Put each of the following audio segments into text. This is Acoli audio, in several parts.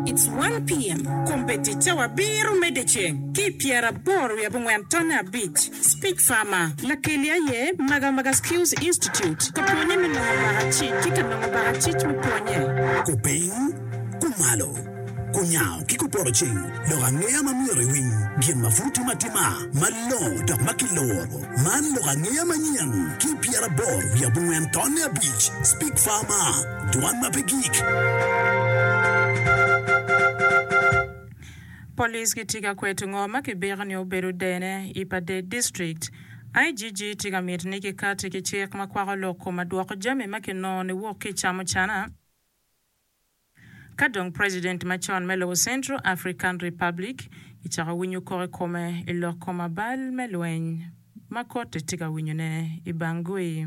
It's one PM, Kombe ticce wabiro medde ceng ki i pyeraboro wiye abongwen tonne abic. Speech Farmer. Lakeli aye Magamaga Skills Institute ka pwonye me nongo lwaka cic ki ka nongo baka cic me pwonye. Kupiny, kumalo, kunyango ki kupoto cing lok angeya ma myero iwiny gin ma pud tim atima malongo dok ma kiluro. Man lok angeya manyen ki i pyeraboro wiye abongwen tonne abic. Speech Farmer. Dwan ma pe gik. Police gitye ka kweto ngo ma kibiko ni obedo dene i Padee District. IGG tye ka miti ni kikati ki cik ma kwako lok kom adwoko jami ma kinongo ni wuok ki i camucana ka dong President macon me lobo Central African Republic kicako winyo kok i kome i lok kom abal me lweny ma Korte tye ka winyone i Bangui.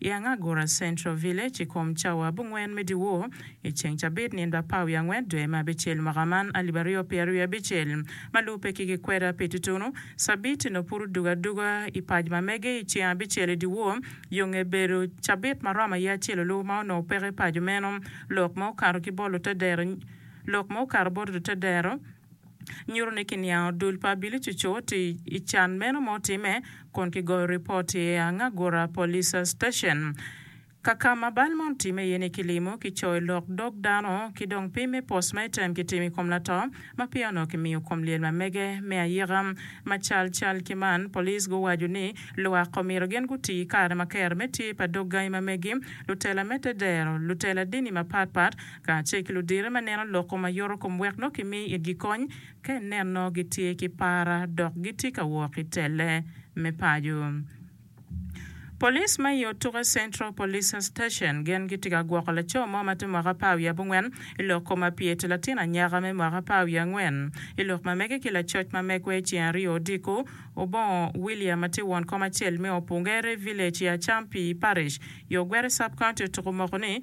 I Angagura Central Village i kom cawa abongwen me dyewor i ceng cabit nyen ba pa wiye angwen dwe me abicel mwaka man alip aryo pyeraryo wiye abicel ma lubbe ki gikweda pi tutunu cabit nongo pud odugo aduga i pac ma mege i ceng abicel i dyewor yo nge bedo cabit ma romo aye acel olubo ma onongo peke i paco meno lok ma okato ki bot lutedero lok ma okato bot lutedero. nyuto ni kiniango dul pa Bilicucu ti i can meno ma otimme kun kigoyo ripot i Angagura Police Station, ka ka ma bal man otimme iye ni kilimo, kicoyo lok dog dano, ki dong pim me post matem kitimo i kom lato ma peya onongo kimiyo kom lyel ma mege me ayika. Ma cal cal ki man, police guwaco ni lwak omyero gin guti ki kare ma kero me tye pa dog gangi ma megi, lutela me te dero, lutela dini mapat pat, kacel ki ludite ma neno loko ma yoto kom wek nongo kimi itgi kony ka ineno gitye ki para dok gitye ka wok i telle me paco. Police ma i Otuke Central Police Station gin gitye ka gwoko laco mo ma tye mwaka apar wiye abongwen i lok kom apyete latin anyaka me mwaka apar wiye angwen i lok ma mege ki lacoc ma megwa i ceng aryo odiko obongo William ma tye won kom acel me Opungere Village i Acampi Parish yo Gwere Sub-County Otuko moko ni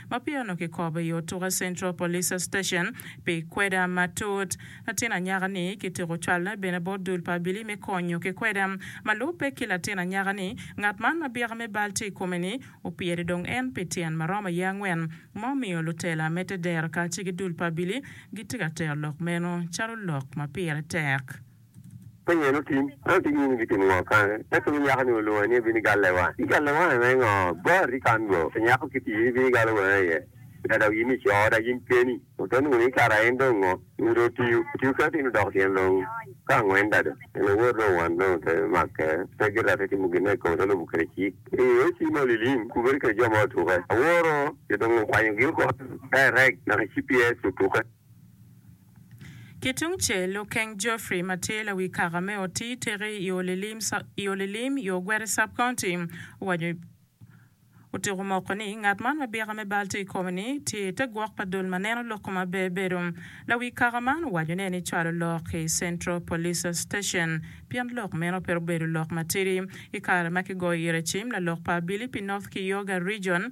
ma peya onongo kikobo i Otuke Central Police Station pi kweda matut. Latin anyaka-ni kityeko cwalle bene bot dul pa Abili me konyo ki kweda. Ma lubbe ki latin anyaka-ni, ngat man ma byeka me bal tye i kome-ni opyere dong en pi tyen ma romo aye angwen, ma omiyo lutela me te dero kacel ki dul pa Abili gitye ka tero lok meno calo lok ma pire tek. Penyo en otim, en otigi ni gitimo ngo kane? Ento wi nyako ni olunga ni ebin igalle wa. Igalle wa me ngo? Bar i kan ngo? Pe nyako kiti in ibin igalo wanga iye tika dok yin ico oda yin keni? Ote nungo ni kara en dong ngo? Nungo dong otiyo, otiyo kene tin odoko tyen dong ka angwen dado. En owor dong wan dong ote make pe girate timo gin ma i kome te lubu kede cik. I o ci ma olilim kubere kede jo ma otuke aworo jo dong okwanyo gi oko, ka irek naka cps otuke. Ki tung cel, Lukeng Geoffrey ma tye lawi kaka me oti tiki i olilim i Ogweri Sub-County owaco otyeko moko ni ngat man ma bika me bal tye i kome-ni tye i te gwok pa dul ma neno loko maber bedo. Lawi kaka man owaco ne ni cwalo lok i Central Police Station pien lok meno pe obedo lok matidi i kare ma kigoyo ire cim lalok pa abili pi North Kioga Region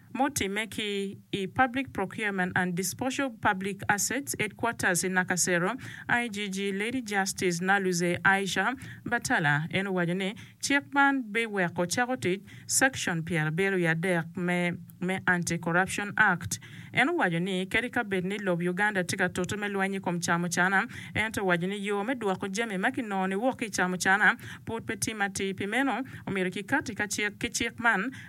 mutimme ki i Public Procurement and Disposal of Public Assets Headquarters i Nakasero, IGG Lady Justice Naluzze Aisha Batala en owaco ni cik man biweko cako tic Section pyerabiro wiye adek me me Anti Corruption Act. En owaco ni kadi ka bed ni lob Uganda tye ka tute me lweny i kom camucana, ento owaco ni yo me dwoko jami ma kinongo ni wok ki i camucana pud pe timme atir pi meno omyero kikati ka cik ki cik man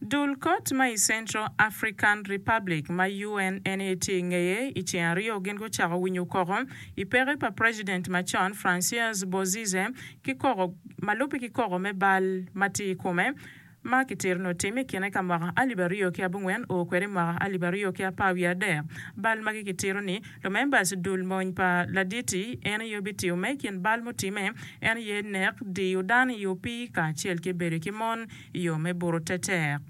Dul kot ma i Central African Republic ma UN en aye tye i ngeye i ceng aryo gin gucako winyo koko i peke pa president macon Franciais Bozize ki koko ma lubbe ki koko me bal ma tye i kome ma ki tito ni otime i kine ka mwaka alip aryo ki abongwen oo kwede i mwaka alip aryo ki apar wiye adek bal magi ki tito ni Lumerbas dul mony pa Laditi en aye obitiyo me i kin bal mutimme, en aye nek, diyo dano i opii kacel ki bedo ki mon i yo me buto tetek.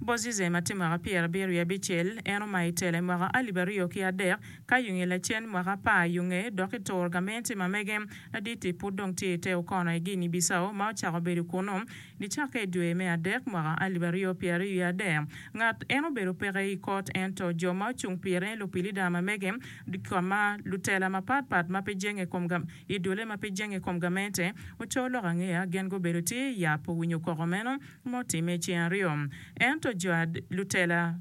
Bozizem ati mwaka pyerabiro i abicel, en omayo i tela i mwaka alip aryo ki adek, ka yunge lacen mwaka apar yunge dok i tur gamente ma mege. Laditi pud dong tye i te okono i Guinea Bissau ma ocako bedo kunu. Nicakke i dwe me adek mwaka alip aryo pyeraryo wiye adek, ngat en obedo peke i kot, ento jo ma ocung pire, lupilida mamege, ka ma lutela mapat pat ma pe jenge i kom i dole ma pe jenge i kom gamente, oco lok angeya, gin gubedo tye i yap owinyo koko meno ma otimme i ceng aryo. Ento jo lutela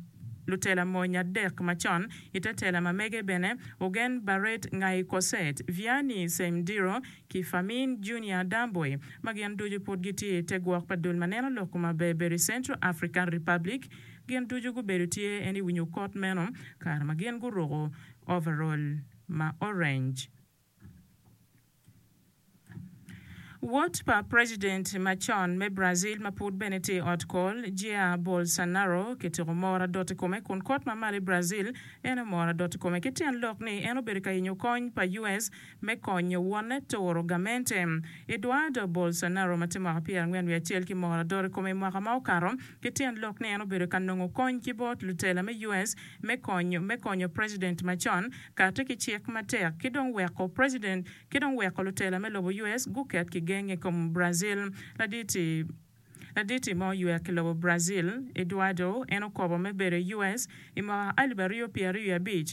lutela mony adek macon i te tela mamege bene, ogen Barret ngai Koset, Vianney Seimdiro, ki Famin Junior Adamboe ma gin ducu pud gitye i te gwok pa dul ma neno lok kom aberber i Central African Republic. Gin ducu gubedo tye en i winyo kot meno kare ma gin guruko overall ma orange. Wod pa president macon me Brazil ma pud bene tye i ot kol, Jair Bolsonaro kitiko moro adot i kome kun kot ma malo i Brazil ene omoro adot i kome ki tyen lok ni en obedo ka yenyo kony pa US me konyo wonne turo gamente. Eduardo Bolsonaro ma tye mwaka pyerangwen wiye acel ki moko ladoro i kome i mwaka ma okato, ki tyen lok ni en obedo ka nongo kony ki bot lutela me US me konyo me konyo president macon kate ki cik matek ki dong weko president ki dong weko lutela me lobo US guket ki genge i kom Brazil. Laditi Laditi ma oywer ki lobo Brazil, Eduardo, en okobo me bedo i US i mwaka alip aryo pyeraryo wiye abic,